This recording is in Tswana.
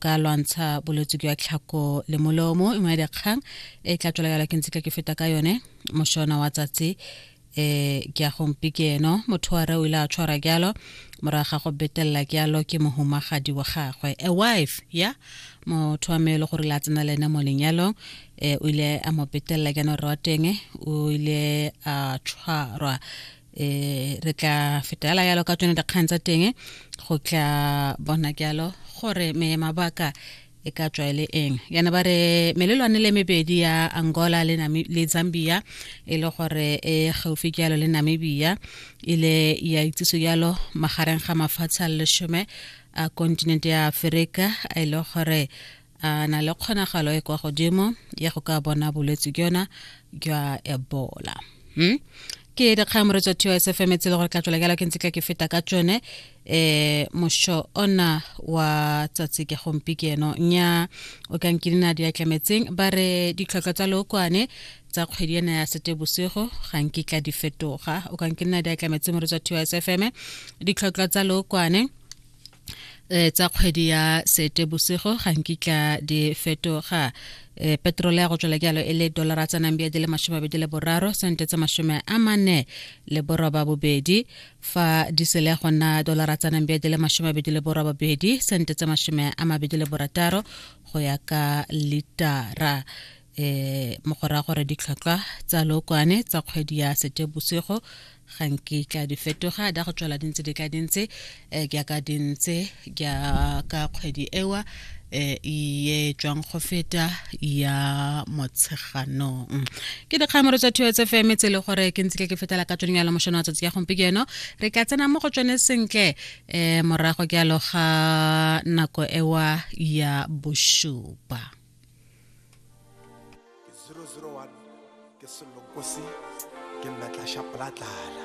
ka lwantsha bolwetse jwa tlhako le molomo e ya dikgang e tla tswela yala ke ntse ke feta ka yone moshona wa tsatsi eh ke ya gompi ke eno motho wa re o ile a tshwara jalo morago ga go betelela jalo ke mohumagadi wa gagwe a wife ya motho wa mele gore la tsena le ene mo lenyalong eh o ile a mo betelela jana rra wa teng o ile a tshwarwa eh re tla fetela yalo ka tsone dikgang tsa teng go tla bona jalo gore me mabaka e ka tswa e le eng yana ba re melelwane le mebedi ya angola le, le zambia e le gore e gaufi jalo le namibia e le ya itsiso jalo magareng ga mafatshe a lesome a kontinente ya aferika e le gore a na le kgonagalo e kwa godimo ya go ka bona bolwetse jona jwa ebola hmm? ke dikgang moretso tio se femetse le gore ka tswela jalo ke ntse ka ke feta ka tsone eh mosho ona wa tsatsi ke gompi ke eno nya o ka nkilina di atlametseng ba re ditlhotlho tsa lookwane tsa kgwedi ena ya sete bosigo ga nkitla di fetoga o ka nkilina di atlametseng moretso tio sfm ditlhotlho tsa lookwane eh, tsa kgwedi ya sete bosigo ga nkitla di fetoga e petrole ya go tswela jalo e le dolara tsa nambia di le masome abedi le boraro sente tsa masome a mane le boroba bobedi fa disele go nna dolara tsa nambia di le masome abedi le boroba bobedi sente tsa masome a mabedi le borataro go ya ka litara um mo go raya gore ditlhotlhwa tsa lookwane tsa kgwedi ya setebosigo ga nke tla di fetoga da go tswela dintse di ka dintse um ke aka dintse ka ka kgwedi ewa um ye tswang go feta ya motsheganong ke dikgamoro tsa thuo tse fm tse e le gore ke ntse ke ke fetela ka tsone yalo mošono wa tsatsi ya gompieno re ka tsena mo go tsone sentle um morago ke aloga nako ewa ya bošupa 001 ke sello nkosi ke nna tla sha pla tlala